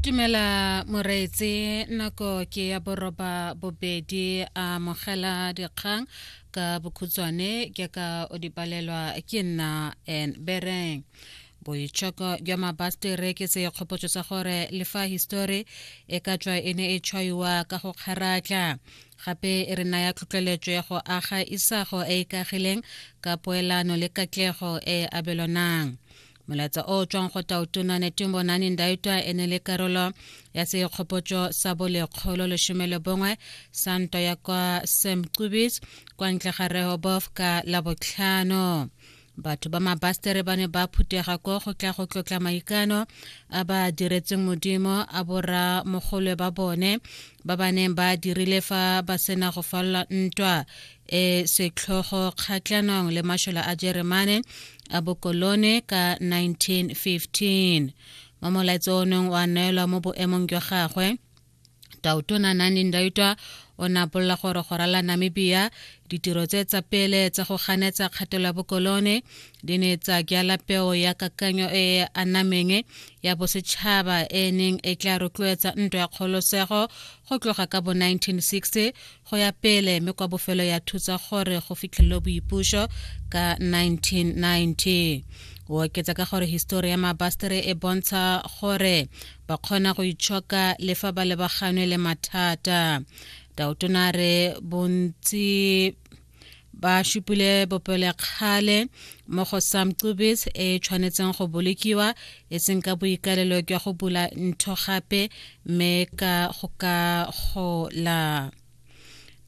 Tumela Moreetse nako ke ya boroba bobedi a mogela dikgang ka bokhutswane ke ka o di palelwa ke nna en bereng boitshoko jwa mabastere ke se kgopotso sa gore le fa histori e ka tswa e ne e tshwaiwa ka go kgaratla gape e re naya tlhotlheletso ya go aga isago e e kagileng ka poelano le katlego e e abelwanang molaetsa o tswang go taotona netumbo nane ndaitwa e ne le karolo ya sekgopotso sa bolekgolo lesome le bongwe sa ntwa ya kwa semcubis kwa ntle ga rehobof ka labotlhano batho ba mabastere ba ne ba phutega ko go tla go tlotla maikano a ba diretseng modimo a bora mogolwe ba bone ba ba neng ba dirile fa ba sena go falola ntwa e setlhogo kgatlhanong le mashola a jeremane a bokolone ka 1915 mo molaetso o neng wa neelwa mo boemong jwa gagwe tautona nani ndaitwa o ne apolola gore go rala namibia ditiro tse tsa pele tsa go ganetsa kgatelo ya bokolone di ne tsa jala peo ya kakanyo e e anameng ya bosetšhaba e neng e tla rotloetsa ntwa ya kgolosego go tloga ka bo 1960 go ya pele me kwa bofelo ya thutsa gore go fitlhelelo boipuso ka 1990 o oketsa ka gore histori ya mabastere e bontsha gore ba kgona go itshoka le fa ba lebaganwe le mathata taotona re bontsi ba šupile bopelekgale mo go sam cubis e tshwanetseng go bolokiwa e seng ka boikalelo jwa go bula ntho gape mme ka go ka gola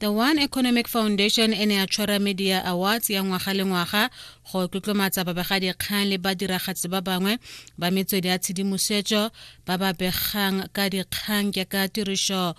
the one economic foundation e ne ya tshwara media awards ya ngwaga le ngwaga go tlotlomatsa babegadikgang le badiragatsi ba bangwe ba metswedi ya tshedimosetso ba ba begang ka dikgang jaaka tiriso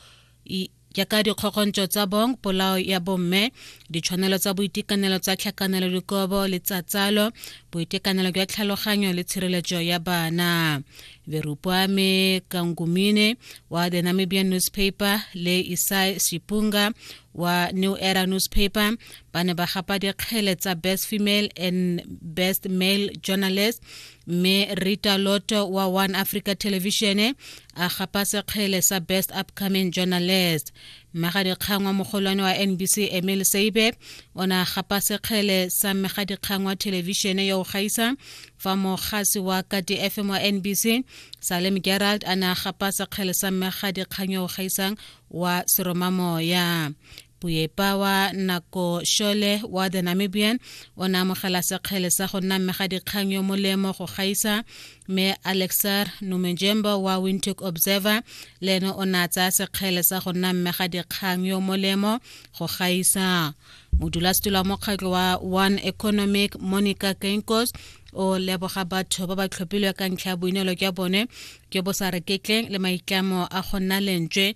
jaaka dikgokgontso tsa bong polao ya bomme ditshwanelo tsa boitekanelo tsa tlhakanelo dikobo le tsa tsalo boitekanelo jwa tlhaloganyo le tshireletso ya bana verupwame kangumine wa the namibian newspaper le isai sipunga wa new era newspaper ba ne ba gapa dikgele tsa best female and best male journalist mme rita loto wa one africa television a gapa sekgele sa best upcoming journalist mmegadikgang wa mogolwane wa nbc emil seibe o ne a gapa sekgele sa mmegadikgang wa thelebišene yo o gaisa fa mogasi wa kati fm wa nbc salem gerald a ne a gapa sekgele sa mmegadikgang yo o gaisang wa seromamoya Puepa wa nako Shole wa The Namibian o ne amogela sekgele sa go nna mme ga dikgang yo molemo go gaisa mme Alexar Numenjemba wa Windhoek Observer le ene o ne a tsaya sekgele sa go nna mme ga dikgang yo molemo go gaisa modulasetilo wa mokgatlho wa one economic monica kenkos o leboga batho ba ba tlhophilwe ka ntlha ya boineelo jwa bone jo bo sa reketleng le maitlamo a go nna lentswe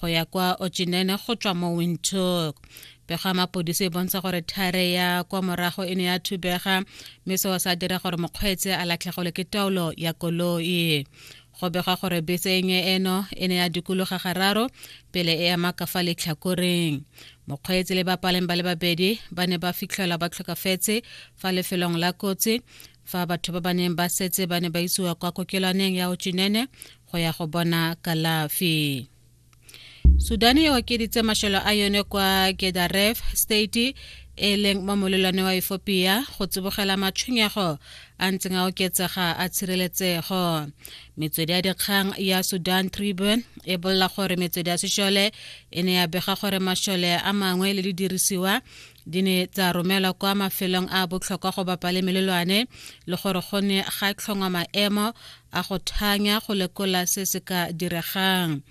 go ya kwa ochinene go tswa mo windhoek pego ya mapodisi e bontsha gore thare ya kwa morago e ne ya thubega mme seo sa dira gore mokgweetse a latlhegole ke taolo ya koloi go begwa gore bese e nye eno e ne ya dikologa gararo pele e ema ka fa letlhakoreng mokgweetsi le bapaleng ba le babedi ba ne ba fitlhelwa ba tlhokafetse fa lefelong la kotsi fa batho ba ba neng ba setse ba ne ba isiwa kwa kokelwaneng ya ochinene go ya go bona kalafi sudan e okeditse mashelo a yone kwa gedaref state e leng mo molelwane wa efopia go tsibogela matshwenyego a ntseng a oketsega a tshireletsego metswedi ya dikgang ya sudan tribune e bolela gore metswedi ya sešole e ne ya bega gore mašole a mangwe le didirisiwa di ne tsa romelwa kwa mafelong a botlhokwa go bapa le melelwane le gore go ne ga tlhongwa maemo a go thanya go lekola se se ka diregang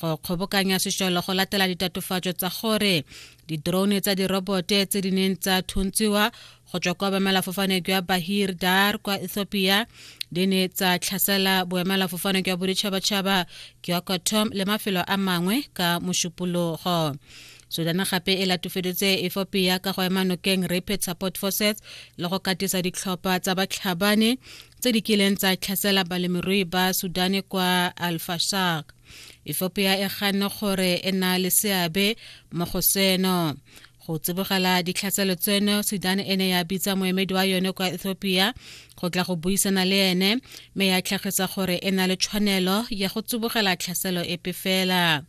go kgobokanya sešolo go latela ditatofatso tsa gore didrone tsa dirobote tse di neng tsa thuntsiwa go tswa kwa boemelafofane jwa bahir dar kwa ethiopia di ne tsa tlhasela boemelafofane jwa boditšhabatšhaba jwa kotom le mafelo a mangwe ka mošupologo sudan gape e latofeditse efopia ka go ema nokeng rapid support forces le go katisa ditlhopha tsa batlhabane tse di kileng tsa tlhasela balemirui ba sudane kwa alfashak ethiopia e ganne gore e na le seabe mo go seno go tsibogela ditlhaselo tseno sudan e ne ya bitsa moemedi wa yone kwa ethiopia go tla go buisana le ene mme ya tlhagisa gore e na le tshwanelo ya go tsibogela tlhaselo epe fela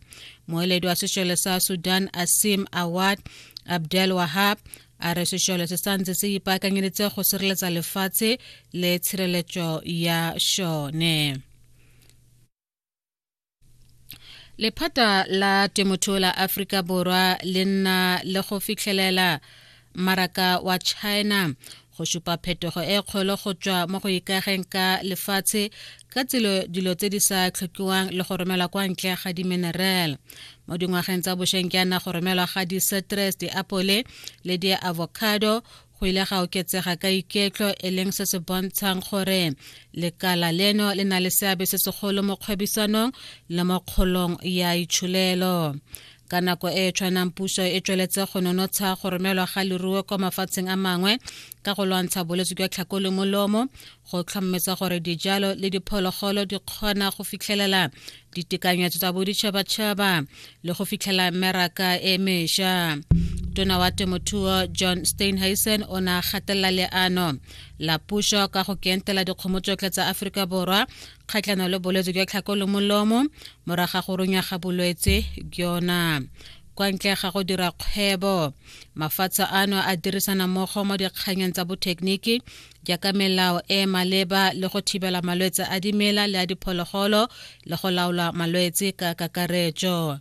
moeledi wa sešole sa sudan asim awad abdel wahab a re sešole se santse se ipaakanyeditse go sireletsa lefatshe le tshireletso ya šone lephata la temothuo la aforika borwa le nna le go fitlhelela maraka wa china go supa phetogo e kgolo go tswa mo go ikageng ka lefatshe ka tselo dilo tse di sa tlhokiwang le go romelwa kwa ntle ga diminerale mo dingwageng tsa bošweng ke ana go romelwa ga di-citrus diapole le di-avocado go ile ga oketsega ka iketlo e leng se se bontshang gore lekala leno le na le seabe se segolo mo kgwebisanong le mo kgolong ya itšholelo ka nako e e tshwanang puso e tsweletse go nonotsha go romelwa ga leruo kwa mafatsheng a mangwe ka go lwantsha bolwetse jwa tlhako le molomo go tlhommetsa gore dijalo le diphologolo di kgona go fitlhelela ditekanyetso tsa boditšhabatšhaba le go fitlhela meraka e mesha tona wa temothuo john steinheisen o ne a gatelela leano la puso ka go kentela dikgomo tsotlhe tsa aforika borwa kgatlhano le bolwetse jwa tlhako le molomo moraga go runya ga bolwetse jona kwa ntle ga go dira kgwebo mafatshe ano a dirisana mmogo mo dikganyeng tsa bothekeniki jaaka melao e e maleba le go thibela malwetse a dimela le a diphologolo le go laola malwetse ka kakaretso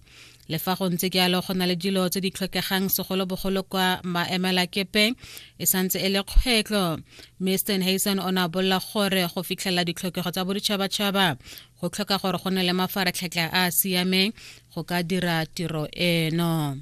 le fa go ntse jalo go na le dilo tse di tlhokegang segolobogolo kwa maemelakepeng e santse e le kgwetlho mme stenhason o ne a bolela gore go fitlhelela ditlhokego tsa boditšhabatšhaba go tlhoka gore go ne le mafaratlhatlha a a siameng go ka dira tiro eno